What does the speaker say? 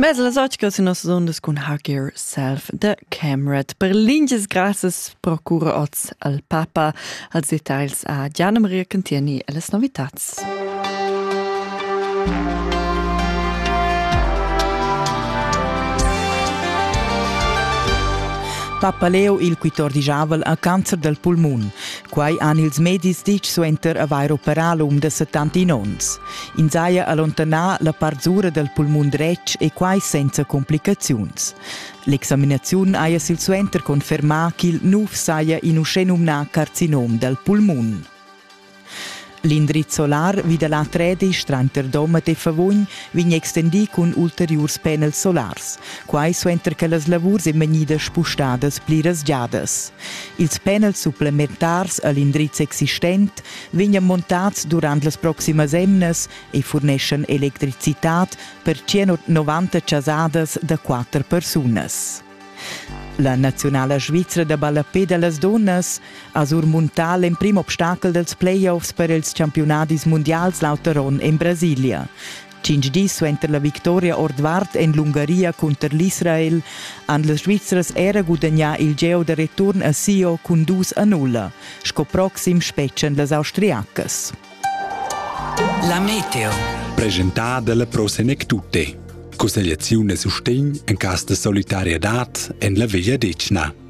Mes las otgas in nossas ondas cun Hug Yourself de Camerat. Per linges grassas procura oz al Papa als details a Gianna Maria Cantieni e les novitats. Papa Leo il 14 ha cancer del pulmun. Quai han ils medis ditg suenter avair operà l'um de 70 onns. Ins haja allontanà la part sura dal pulmun dretg e quai senza complicaziuns. L'examinaziun haja silsuenter confermà ch'il nuf saja in uschenumnà carcinom dal pulmun. L'indriz solar vi da la Tredisch tranter Domat e Favugn vegn extendì cun ulteriurs panels solars, quai suenter che las lavurs èn vegnidas spustadas pliras giadas. Ils panels supplementars a l'indriz existent vegnan montads durant las proximas emnas e furneschan electricitad per 190 chasadas da quatter persunas. La naziunala svizra da ballapé da las dunnas ha surmuntà l'emprim obstacel dals playoffs per ils campiunadis mundials l'auter onn en Brasilia. Cinc dis suenter la victoria ordvart en l'Ungaria cunter l'Israel han las Svizras era gudagnà il geo da return a Sio cun dus a nulla. Sco proxim spetgan las austriacas. La meteo. Presentada dalla Pro Senectute. Cussegliaziun e sustegn en cas de solidarietad en la vegliadetgna.